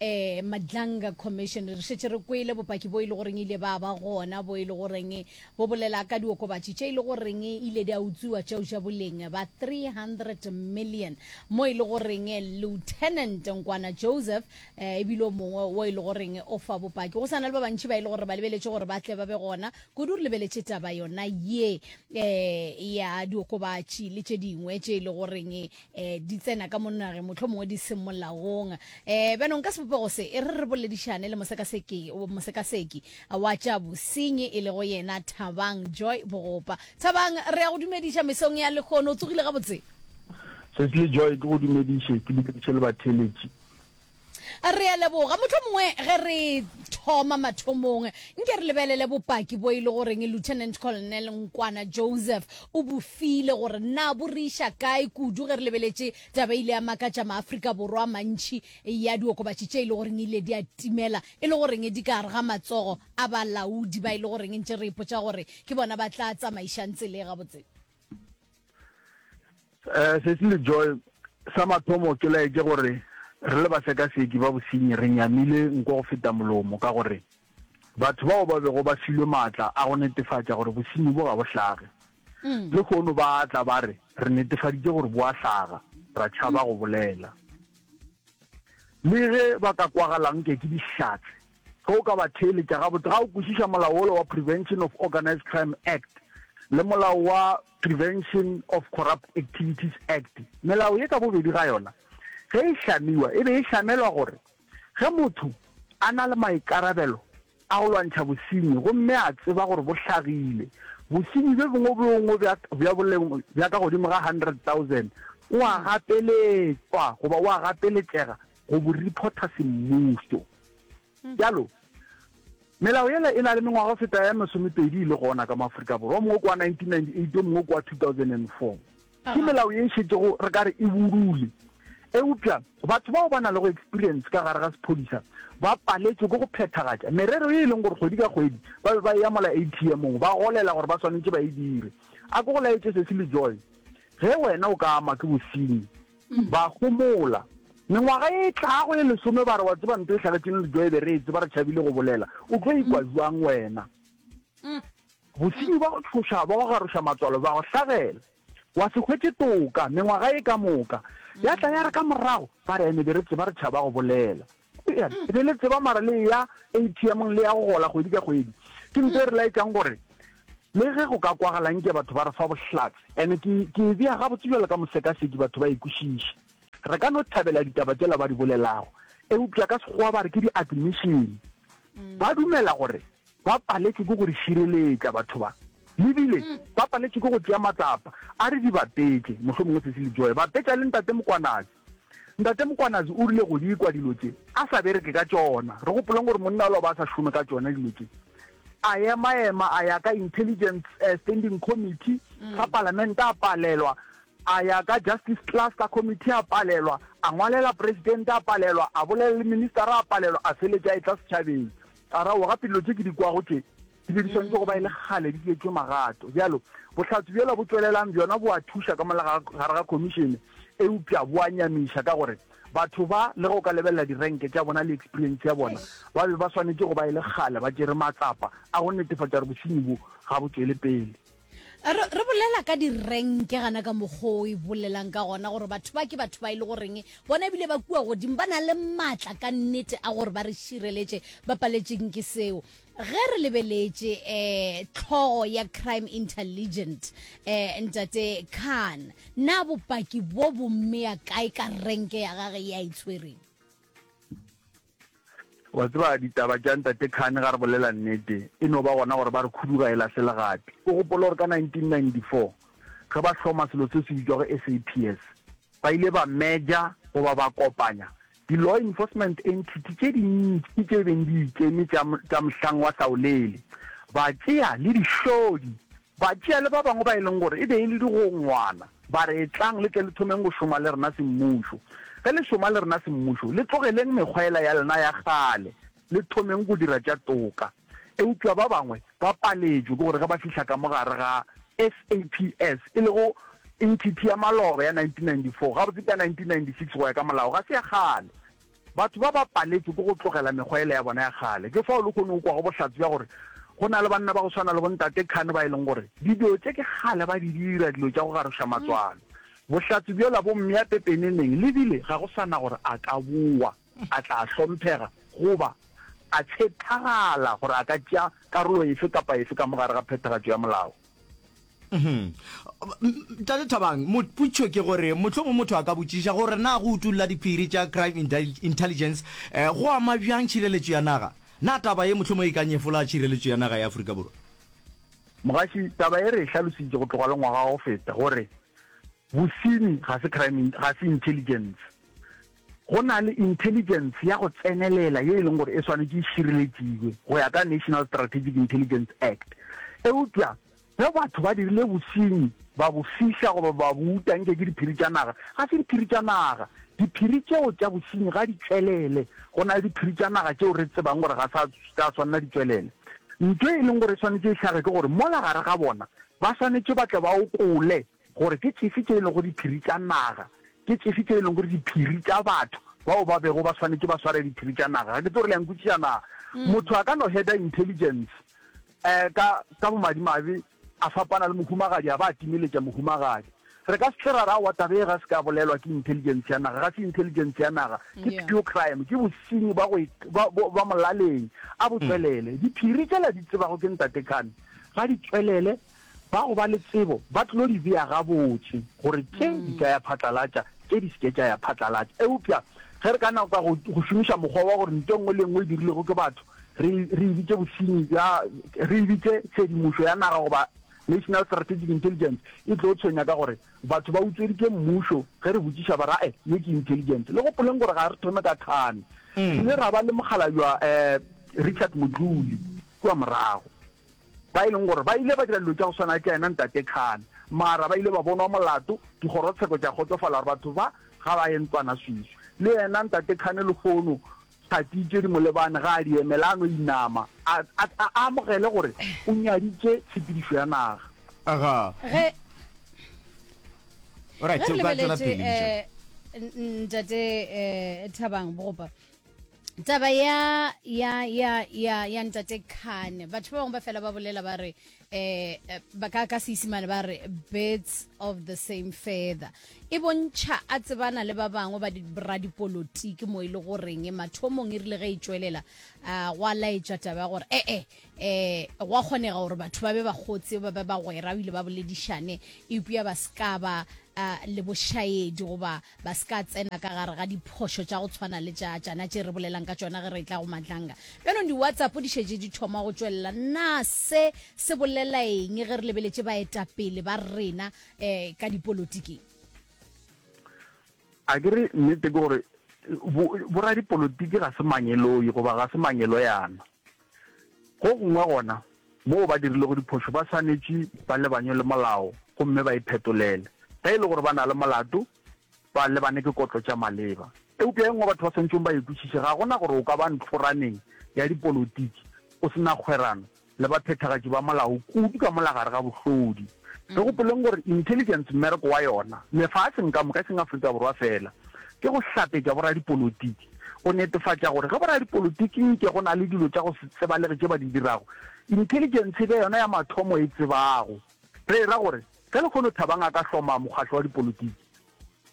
Ee, Madlanga Commission, re šetše re kwele bopaki bo e le goreng ile ba ba gona bo e le goreng bo bolela ka diokobatši tše e le goreng ile di a utswiwa tšeo tša boleng ba 300 million mo e le goreng Lieutenant Nkwana Joseph eh, e bile o mongwe wo e le goreng o fa bopaki go sa na le ba bantši ba e le gore ba lebeletše gore ba tle ba be gona kudu re lebeletše taba yona ye eh, ya diokobatši le tše dingwe tše e le goreng eh di tsena ka monna re motlho mongwe di seng molaong eh bjanong ka sebopego se e re re boledišane le mosekaseki mosekaseki wa tša bosenyi e lego yena thabang joy bogopa thabang re ya go dumediša mesong ya lekgono o tsogile gabotse sesile joy ke go dumediše ke dumediše le batheletši Re a leboga. Mohlomongwe ge re thoma mathomong, nke re lebelele bopaki bo e le goreng Lieutenant Colonel Nkwana Joseph o bo file gore na bo re iša kae kudu ge re lebeletše taba e ile ya makatša Maafrika Borwa a mantši ya diokobatši tše e le goreng ile di a timela e le goreng di ka gare ga matsogo a balaodi ba e le goreng ntše re ipotša gore ke bona ba tla tsamaišang tsela e gabotse. eh sesi le joy sa mathomo ke laetse gore re le basekaseki ba bosenyi re nyamile nko go feta molomo ka gore batho bao ba bego ba filwe maatla a go netefatša gore bosenyi bo ga bo hlage mm. le kgono ba tla ba re re netefaditše gore bo a hlaga ra tšhaba go bolela le ge ba ka kwagalang ke ke dihlatse Ge o ka ba theeletša gabotse, ga o kwešiša molao wola wa Prevention of Organised Crime Act le molao wa Prevention of Corrupt Activities Act, melao ye ka bobedi ga yona ge e hlamiwa e be e hlamelwa gore ge motho a na le maikarabelo a go lwantšha bosenyi gomme a tseba gore bo hlagile, bosenyi bjo bongwe bjo bongwe bja bja boleng bja ka godimo ga 100,000 o a gapeletšwa goba o a gapeletšega go bo reporta semmuso. Jalo, melao yela e na le mengwaga go feta ya masomepedi e le gona ka mo Afrika Borwa, o mongwe kwa 1998 o mongwe kwa 2004. Ke melao ye e šetšego re ka re e burule. Eupša batho bao ba na le go experience ka gare ga sephodisa ba paletšwe ke go phethagatša merero ye e leng gore kgwedi ka kgwedi ba be ba e yamola ATM-ong, ba golela gore ba swanetše ba e dire. A ke go laetše Cecily Joy, Ge wena o ka ama ke bosenyi, Ba homola. Mengwaga ye e tlago ye lesome ba re, Wa tseba nto e hlagetšeng le joe be re e tseba re tšhabile go bolela. O tlo ikwa bjang wena? Bosenyi bja go tšhoša bja go garoša matswalo bja go hlagela. Wa se hwetše toka mengwaga ye ka moka ya tla ya re ka morago ba re, Ene be re tseba re tšhaba go bolela. Ke be le tseba mara le ya ATM le ya go gola kgwedi ka kgwedi. Ke ntho e re laetsang gore le ge go ka kwagalang ke batho ba re fa bohlatse ene ke ke e bea gabotse jalo ka mosekaseki batho ba ikwešiše. Re ka no thabela ditaba tsela ba di bolelago eupša ka sekgowa ba re ke di-admission. Ba dumela gore ba paletšwe ke go re šireletša batho ba lebile ba paletšwe ke go tšea matsapa a re di bapetše mohlomongwe se se le joe bapetša le ntate mokwanatsi Ntate Mokwanazi o rile go di kwa dilo tše a sa bereke ka tšona. Re gopoleng gore monna ola o be a sa šome ka tšona dilo tše. A ema-ema a ya ka Intelligence eh, Standing Committee mm. sa Palamente a palelwa, a ya ka Justice Cluster Committee a palelwa, a ngwalela Presidente a palelwa, a bolela le Minister a palelwa, a feletša e tla setšhabeng. A ra o gape dilo tše ke di kwago tše Dilo di swanetše go ba e le kgale di dietšwe magato. Bjalo, bohlatse bjola bo tšwelelang bjona bo a thuša ka mola ga gare ga khomišene, eupša bo a nyamiša ka gore batho ba, le ge o ka lebelela direnke tša bona le eksperientse ya bona, ba be ba swanetše go ba e le kgale ba tšere matsapa a go netefatša gore bosenyi bo ga bo tšwele pele. re, re bolela ka direnke gana ka mokgwa o e bolelang ka gona gore batho ba ke batho ba e le goreng bona ebile ba kua godimo ba na le maatla ka nnete a gore ba re šireletše ba paletseng ke seo ge re lebeletše um tlhogo ya crime intelligent um ntate khan na bopaki bo bommea kae ka renke ya gage ya itshwereng e Wa tseba, ditaba tša Ntate Khane, ga re bolela nnete, e no ba gona gore ba re khuduga e lahle legapi. O gopola gore ka 1994, ge ba hloma selo seo se bitšwago SAPS, ba ile ba merger, goba ba kopanya, di-law enforcement entity tše dintši tše beng di ikeme tša, tša mohlang wa hlaolele, ba tšea le dihlodi Batšeale ba bangwe ba e leng gore e be e le digongwana ba re, Etlang le tle le thomeng go šoma le rena semmušo. Ge le šoma le rena semmušo, le tlogeleng mekgwa yela ya lena ya kgale, le thomeng go dira tša toka. Eupša ba bangwe ba paletšwe ke gore ge ba fihla ka mo gare ga SAPS, e lego entity ya maloba ya 1994, gabotse ke ya 1996 go ya ka molao, ga se ya kgale. Batho ba ba paletšwe ke go tlogela mekgwa yela ya bona ya kgale. Ke fao lehono o kwago bohlatse bja gore go na le banna ba go swana le bontate Khan ba e leng gore dilo tše ke kgale ba di dira, dilo tša go garoša matswalo. Bohlatse bjola bo mmea pepeneneng le bile ga go sa na gore a ka bowa, a tla hlomphega goba a tshethagala gore a ka tšea karolo efe kapa efe ka mo gare ga phethagatšo ya molao. Mhm. tate thabang moputšho ke gore mohlomong motho a ka botšiša gore na go utulla diphiri tša crime intelligence um go ama bjang tšhireletšo ya naga na taba ye mohlomong e ka nyefola tšhireletšo ya naga ya aforika borwa mogaši taba e re e hlalositše go tloga le ngwaga wa go feta gore bosenyi ga se crime ga se intelligence Go na le intelligence ya go tsenelela ye e leng gore e swanetše e šireletšiwe go ya ka National Strategic Intelligence Act. Eupša ge batho ba dirile bosenyi, ba bo fihla goba ba bo uta nke ke diphiri tša naga, ga se diphiri tša naga. Diphiri tšeo tša bosenyi ga di tšwelele. Go na le diphiri tša naga tšeo re tsebang gore ga sa tša swanela di tšwelele. Ntho e leng gore e swanetše e hlage ke gore mola gare ga bona ba swanetše ba tle ba okole Gore ke tšefe tše e lego diphiri tša naga, ke tšefe tše e lego diphiri tša batho bao ba bego ba swanetše ba sware diphiri tša naga. Ga ke tse gore le a nkwešiša na? Mm. Motho a ka no header intelligence um ka ka bomadimabe a fapana le mohumagadi a ba a timeletša mohumagadi re ka setle ra ra wa tabe ga se ka bolelwa ke intelligence ya naga ga se intelligence ya naga ke pure crime ke bosenyi ba go ba molaleng a botswelele mm. diphiri tsela di tsebago ke ntate khane ga di tswelele Ba go ba le tsebo ba tlilo di bea gabotse gore tše di ka ya phatlalatša, tše di se ke tša ya phatlalatša. Eupša ge re ka naka go go šomiša mokgwa wa gore nto e nngwe le e nngwe e dirilwego ke batho re re e bitše bosenyi bja, re e bitše tshedimošo ya naga goba National Strategic Intelligence, e tlo tshwenya ka gore batho ba utsweditše mmušo ge re botšiša ba ra e, ye ke intelligence. Le gopoleng gore ga re thome ka Thane, re ile ra ba le mokgalabjwa Richard Modluli kua morago. ba e leng gore ba ile ba dira dilo tša go swana le tša yena Ntate Khan, mara ba ile ba bonwa molato, dikgorotsheko tša kgotsofala gore batho ba ga ba ye ntlwana swiswi. Le yena Ntate Khan lehono Thathi Tšedimolebane ga a di emele, a no inama, a, a, a amogele gore o nyaditše tshepedišo ya naga. Aga. Ge, ge re lebeletše, eh, Ntate eh, Thabang Bogopa, taba ya ya ya ya ya ntate khane batho ba bangwe ba fela ba bolela ba re eh, eh ba ka ka seisimane ba re birds of the same feather e bontšha a tsebana le ba bangwe ba radipolotiki mo e le goreng mathomong e rile ge e tšwelela um gwa laetša taba ya gore ee eh, eh, eh gwa kgonega gore batho ba be ba gotse ba be ba gwera o ile ba boledišane eupša ba se ka ba uh, le bošaedi goba ba se ka tsena ka gare ga diphošo tša go tshwana le tša tšana tše re bolelang ka tšona ge re tla go matlanga bjanong di-whatsapp di šetše di thoma go tšwelela na se se bolela eng ge re lebeletše baetapele ba rena um ka dipolotiking a ke re nnete ke gore boradipolotiki ga se mangeloi goba ga se mangeloyana Go gongwe gona moo ba dirilego diphošo ba swanetše ba lebanywe le molao gomme ba iphetolele. Ge e le gore ba na le molato, ba lebane ke kotlo tša maleba. Eupša e nngwe batho ba swanetšego ba e kwešiše, ga go na gore o ka ba ntlhoraneng ya dipolotiki o se na kgwerano le baphethagatši ba molao, kudu ka mola gare ga bohlodi. Re gopoleng gore intelligence mmereko wa yona, lefaseng ka moka, e seng Afrika Borwa feela, ke go hlapetša boradipolotiki. go netefatša gore ge boradipolotiki nke go na le dilo tša go se tsebalege tše ba di dirago, intelligence e be yona ya mathomo e tsebago. Re e ra gore ge lehono Thabang a ka hloma mokgatlo wa dipolotiki,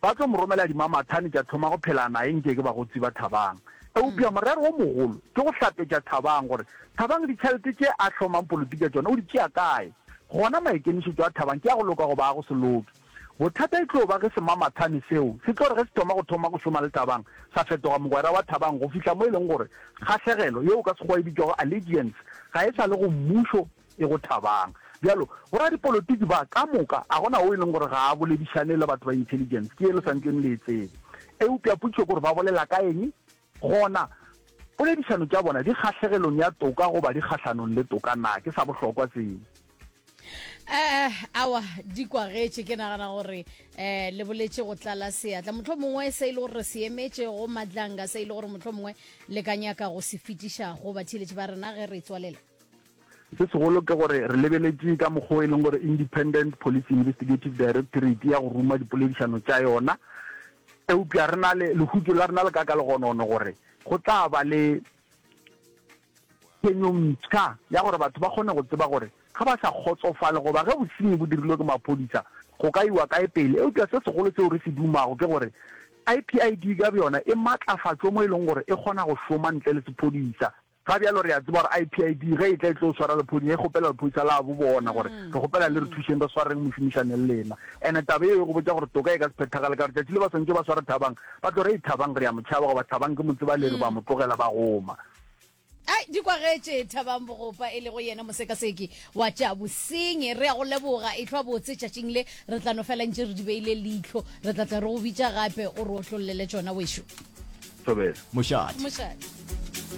ba tlo mo romela dimamathane tša thoma go phela naye nke ke bagotsi ba Thabang. Eupša morero o mogolo ke go hlapetša Thabang gore Thabang ditšhelete tše a hlomang polotiki ka tšona o di tšea kae. Gona maikemišetšo a Thabang ke a go loka goba a go se loke. Bothata e tlo ba ge semamathane seo se tlo re ge se thoma go thoma go šoma le Thabang, sa fetoga mogwera wa Thabang go fihla mo e leng gore kgahlegelo, yeo ka Sekgowa e bitšwago allegiance, ga e sa le go mmušo, e go Thabang. Bjalo, boradipolotiki ba ka moka a go na wo e leng gore ga a boledišane le batho ba intelligence, ke ye le sa ntleng le e tseba. Eupša potšišo ke gore ba bolela ka eng? Gona, poledišano tša bona di kgahlegelong ya toka goba di kgahlanong le toka na? Ke sa bohlokwa seo. Eh, awa, di kwagetše. Ke nagana gore eh, le boletše go tlala seatla. Motlho mongwe se e le gore re se emetše go madlanga, se e le gore motlho mongwe le ka nyaka go se fetiša go batheeletši ba rena ge re tswalela. Se segolo ke gore re lebeletše ka mokgwa o e leng gore Independent Police Investigative Directorate ya go ruma dipoledišano tša yona, eupša re na le lehutšo la rena le ka ka legonono gore go tla ba le phenyo mpsha ya gore batho ba kgone go tseba gore ga ba sa kgotsofale goba ge bosenyi bo dirilwe ke maphodisa go ka iwa kae pele. Eupša se segolo seo re se dumago ke gore IPID ka bjona e matlafatšwe mo e leng gore e kgona go šoma ntle le sephodisa. Ka bjalo re a tseba gore IPID ge e tla e tlo swara lephoni e kgopela lephodisa la bo bona gore, Re kgopela le re thušeng re swareng mošomišane le lena. Ene taba yeo e go botša gore toka e ka se phethagale ka gore tšatši le ba swantše ba sware Thabang ba tlo re, Thabang re a mo tšhaba goba Thabang ke mo tseba le re ba mo tlogela ba goma. Ai, di kwagetše Thabang Bogopa e lego yena mosekaseki wa tša bosenyi. Re a go leboga. Ehlwa botse tšatšing le, re tla no fela ntše re di beile leihlo. Re tla tla re go bitša gape o re otlollele tšona, wešu. Thobela. Mošate. Mošate.